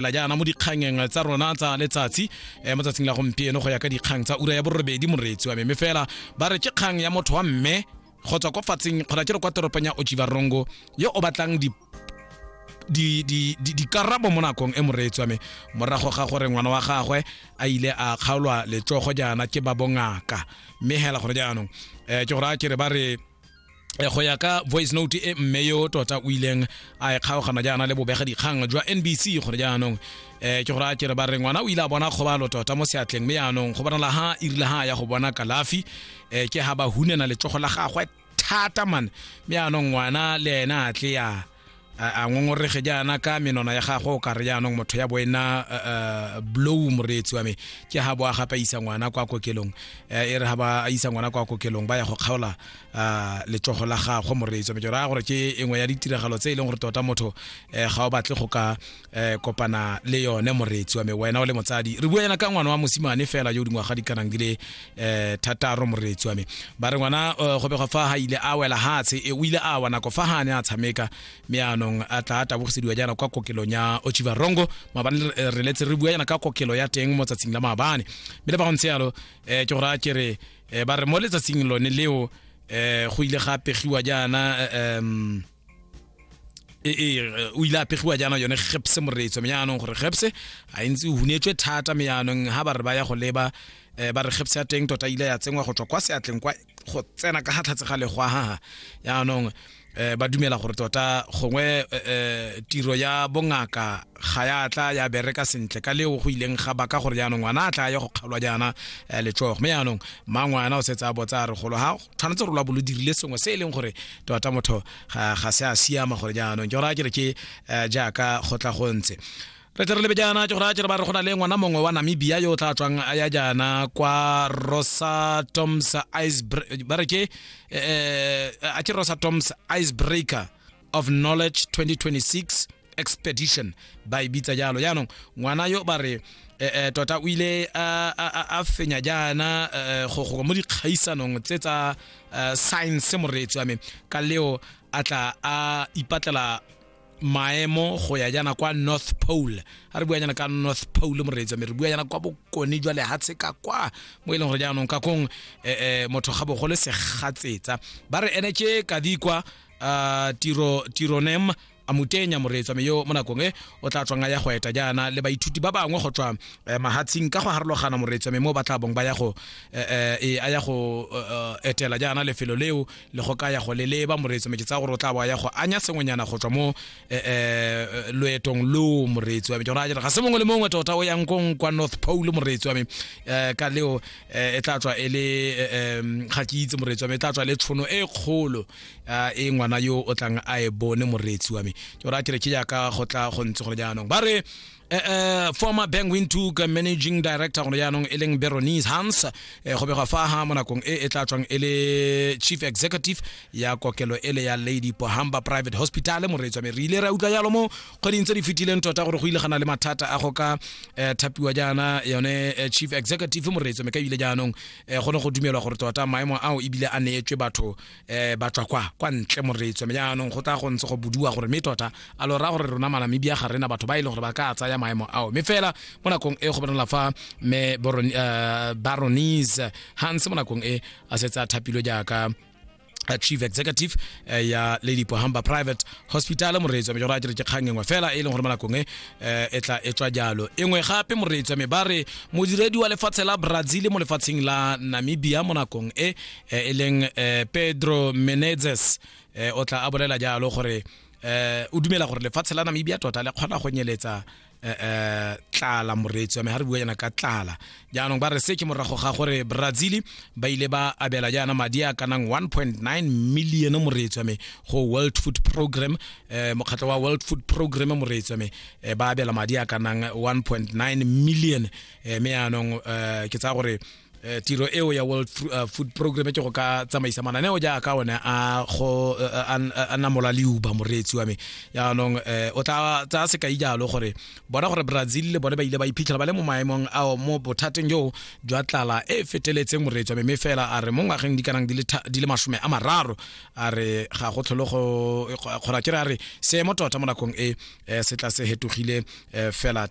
la jaana mo dikgangeng tsa rona tsa letsatsi eh, mo tsatsing la gompieno go ya ka dikgang tsa ura ya borobedi moreetsi wa meme fela ba re ke kgang ya motho wa mme go tswa kwa fatseng kgona ke re kwa toropong ya ojivarongo yo o batlang di di di di dikarabo mo nakong e moreetsi wa me morago ga gore ngwana wa gagwe a ile a kgaolwa letsogo jaana ke ba bongaka mme hela gore jaanong eh, ke gore a ke re ba re Eh, go ya ka voice note e mme yo tota o ileng a e kgaogana jaana le bobega dikgang jwa nbc gore jaanong um ke gore a kere ba re ngwana o ile a bona kgobalo tota mo seatleng mme jaanong go bonala ha irile ha ya go bona kalafi um ke ha ba hunena letsogo la gagwe thata mane mme jaanong ngwana le ena a tle ya a a ngongorege jaana ka menwana ya gago o ka re jaanong motho ya bo ena eh, eh, blow moreetsi wa me ke ga bo a gape a isa ngwana kwa kokelong Eh, e re ga ba a isa ngwana kwa kokelong ba ya go kgaola ah, letsogo la gagwe moreetsi wa me ke raya gore ke engwe ya ditiragalo tse e leng gore tota motho eh, ga o batle go ka eh kopana le yone moreetsi wa me wena o le motsadi re bua yana ka ngwana wa mosimane fela yo dingwaga di kanang di le eh thataro moreetsi wa me ba re ngwana eh, go begwa fa ha ile a wela hatshe e o ile a wa nako fa hane a tshameka me anong a tla a tabogisediwa jana kwa kokelong ya ochiva rongo maabane re- eh, re letse re bua yana ka kokelo ya teng mo tsatsing la maabane mme le ba go ntse yalo eh ke gore a ke re eh, ba re mo letsatsing lone leo eh go ile ga pegiwa jaana eh, em e, e, e, o ile a pegiwa jaana yone gepse moreetso me yaanong gore gepse a e ntse o hunetswe thata me yaanong ga ba re ba ya go leba um ba re gepse ya teng tota ile ya tsenngwa go tswa kwa seatleng kwa go tsena ka ga tlhatse ga legwa gaga yaanong eh ba dumela gore tota gongwe eh, eh, tiro ya bongaka ga ya tla ya bereka sentle ka leo go ileng ga baka gore jaanong ngwana a tla ya go kgalwa jaana eh, letsogo mme jaanong mangwana o setse a botsa a re golo ga tshwanetse rola bolo dirile sengwe se e leng gore tota motho ga ga se a siama gore jaanong ke gore a kere ke eh, jaaka go tla go ntse re tle re lebe jaana ke gore a kere ba re go na le ngwana mongwe wa namibia yo o tla tswang a ya jaana kwa rosa toms ice ba re ke eh, eh, a ke rosa toms icebreaker of knowledge 2026 expedition ba e bitsa jalo jaanong ngwana yo ba re eh, eh, tota o ile a- a a- a fenya jaana eh, go go mo dikgaisanong tse tsa eh, science moreetsi wa me ka leo a tla a ipatlela maemo go ya jaana kwa north pole a re bua jaana ka north pole moreetsi wa me re bua jaana kwa bokone jwa lehatshe ka kwa mo e leng gore jaanong ka kong eh, eh, motho ga bogole segatsetsa ba re ene ke kadikwa uh, tiro tironem a mutenya moreetsa me yo mo nakong e o tla tswang a ya go eta jaana le baithuti ba bangwe go tswa eh, mahatshing ka go harologana moreetsa me mo ba tla bong ba ya go eh, eh, e a ya go etela jaana lefelo leo le go ka ya go leleba moreetsa me ke tsa gore o tla bo ya go anya sengwenyana go tswa mo loetong lo moreetsi wa me ke gore a jere ga se mongwe le mongwe tota o yang kong kwa north pole moreetsi wa me ka leo e tla tswa e le ga ke itse moreetsi wa me e tla tswa le tshono e kgolo a e ngwana yo o tlang a e bone moreetsi wa me ke ora kere ke jaaka go tla go ntse gore jaanong ba re eh, eh, former bank wintug managing director gone jaanong e leng beronies hans eh, go begwa fa ha mo nakong e e tla tswang e le chief executive ya kokelo e le ya lady pohamba private hospital moreetsi wa me re ile ra utlwa jalo mo kgweding tse di fetileng tota gore go ile gana le mathata a go ka eh, thapiwa jaana yone eh, chief executive moreetsi wa me ka ebile jaanong um go ne go dumelwa gore tota maemo ao ebile a neetswe batho um ba tswa kwa kwa ntle moreetso mme jaanong go tla go ntse go bodiwa gore mme tota a lo raya gore rona malamibia ga rena batho ba e leng gore ba ka tsaya maemo ao mme fela mo nakong e go bonala fa mme baronise hans mo nakong e a setse a thapilwe jaaka a chief executive uh, ya lady pohamba private hospital moreetsi wa me jora a ke re ke kgang engwe fela e leng gore mo nakong e eh, e tla e tswa jalo engwe gape moreetsi wa me ba re modiredi wa lefatshe la brazil mo lefatsheng la namibia mo nakong e eh, e leng uh, pedro menezes uh, o tla a bolela jalo gore uh, o dumela gore lefatshe la namibia tota le kgona go nyeletsa eh, eh, tlala moreetsi wa me ga re bua yana ka tlala jaanong ba re se ke morago ga gore brazil ba ile ba abela jaana madi a kanang 1.9 million moreetsi wa me go world food program eh, mokgatlho wa world food program moreetsi wa me eh, ba abela madi a kanang 1.9 million eh, me yaanong eh, ke tsaya gore Eh, tiro eo ya world Fru- eh, food program ke go ka tsamaisa mananeo jaaka one a go eh, eh, an- eh, a namola leuba moreetsi wa me jaanong eh, o tla tsaya sekai jalo gore bona gore brazil le bone ba ile ba iphitlhela ba le mo maemong ao mo bothateng joo jwa tlala e e feteletseng moreetsi wa me mme fela a re mo ngwageng di kanang di le tha- di le masome a mararo a re ga go tlholo go kgora ke re a re seemo tota mo nakong e eh, se tla se hetogile eh, fela